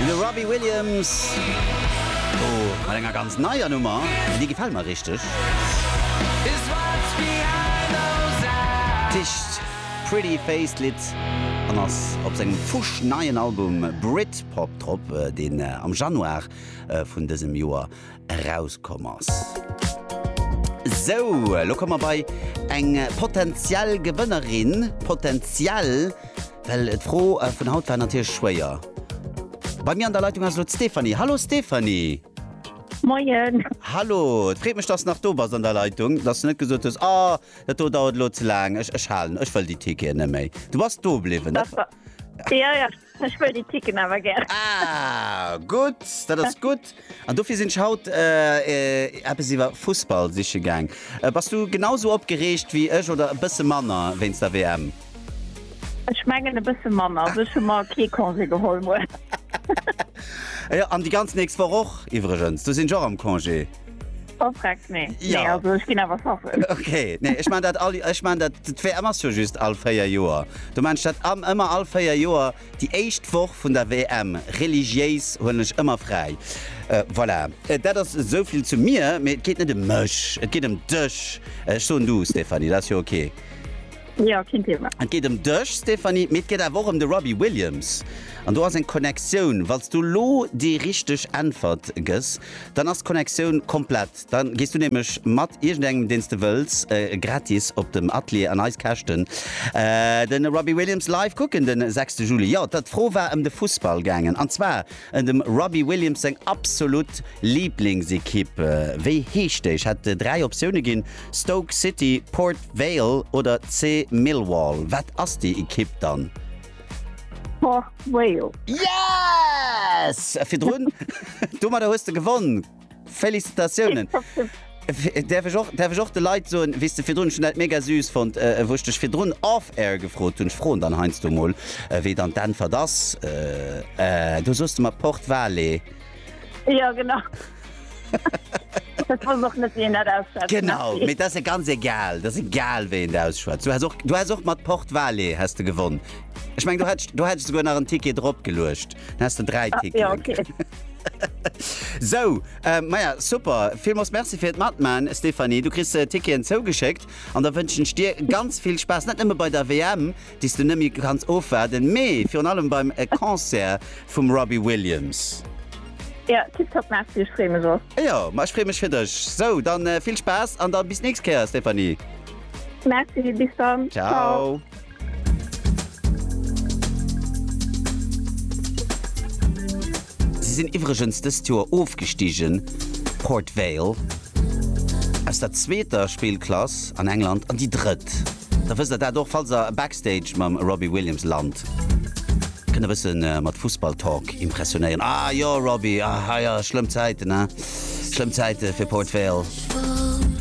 De Robbie Williams do mat enger ganz neier Nummer, déi gefält mer richteg. D'heescht Pretty Face, d'Lidd, an ass op sengem fusch neien Album Britpop drop, deen am Januar vun dësem Joer erauskomm ass. Sou, elo komme mer bei eng potenziell Gewënnerin. Potenziell, well d'Fro vun haut war natierlech schwéier. Bei mir an der Leitung ass elo d'Stéphanie. Hallo Stéphanie! Moien! Hallo! Et freet mech, dass s nach do bass an der Leitung, dass s net gesot hues, Oh, dat do dauert elo ze laang, ech halen, ech wëll déi Ticketen net méi. Du bass do bliwwen. Dat war. Jo, jo, Ech wëll déi Ticken awer gär. Ah, gutt, dat ass gutt. An dofir sinn ech haut eppes iwwer Fussball siche gaang. Bass du genau esou opgereegt wéi ech oder e bësse manner wéinst der WM? Ech mengen e bësse manner, wëll ech hu mer kee Congé geholl muer. Jo, an déi ganz nächst Woch och iwwregens, do sinn ech och am Congé. Verfreckt, nee. Ja. Nee, also ech ginn awer schaffen. Okay, nee, ech man dat all, ech man dat d'WM ass jo just all véier Joer. Du mensch dat am ëmmer all véier Joer déi éischt Woch vun der WM. Religiéis hunn ech ëmmer fräi. Äh, voilà. Äh, dat ass esouvill zu mir, mee et geet net ëm mech, et geet ëm dech. Ech soen du, Stéphanie, dat ass jo okay. Jo, keen Thema. Et geet ëm dech Stéphanie, mee et geet awer och ëm de Robbie Williams. An do ass eng Connectioun. Wann s du elo déi richteg Äntwert gëss, dann ass d'Connectioun komplett. Da gees du nämlech mat iergendengem, deen s de wëlls, gratis op dem Atelier an eis Käschten de Robbie Williams live kucken de sechste Juli. Jo, d'Fro war ëm de Fussball gaangen, an zwar ëm dem Robbie Williams seng absolut Liiblingsekipp. Wéi heescht déi? Ech hat dräi Optioune ginn, Stoke City, Port Vale oder C Millwall, wat ass déi Ekipp dann? Port Vale. Yes! Virdrun, domadder hues de gewonn. Félicitatiounen! Däerf ech och, däerf ech och de Leit soen, wéi s de virdrun, ech hunn dat mega süß fonnt, wou ech dech virdrun off air gefrot hunn, ech froen dann heiansdo emol, wéi dann d'Äntwert ass, do soos de mer Port Vale. Jo, genau. Genau mit das ganz egal das egal we der ausschwt du hast auch du hast auch mat port vale hast du gewonnen ich mein du hättest du hättest sogar nach ein ticket drop gelöscht hast du drei ah, ticket ja, okay. so äh, naja super viel muss merci für matmann stephanie du christ äh, ticket zougeschickt an da wünschen dir ganz viel spaß nicht immer bei der wm déi s du net méi kanns ofwaarden, mee virun allem beim Concert vum Robbie Williams. Jo, tiptop, merci, ech freeë mech och. Jo, ma ech freeë mech fir dech. Sou, dann vill Spaass an da bis d'nächst Kéier, Stéphanie. Merci, bis dann. Ciao. Si sinn iwwregens dëst Joer ofgestigen, Port Vale, aus der zweeter Spillklass an England an déi drëtt. Da wësst der dat och. Falls der Backstage mam Robbie Williams lant, kënnt der bësse mat Fussball-Talk impressionéieren. Ah jo, Robbie, ah ja, schlëmm Zäiten, he? Schlëmm Zäite fir Port Vale.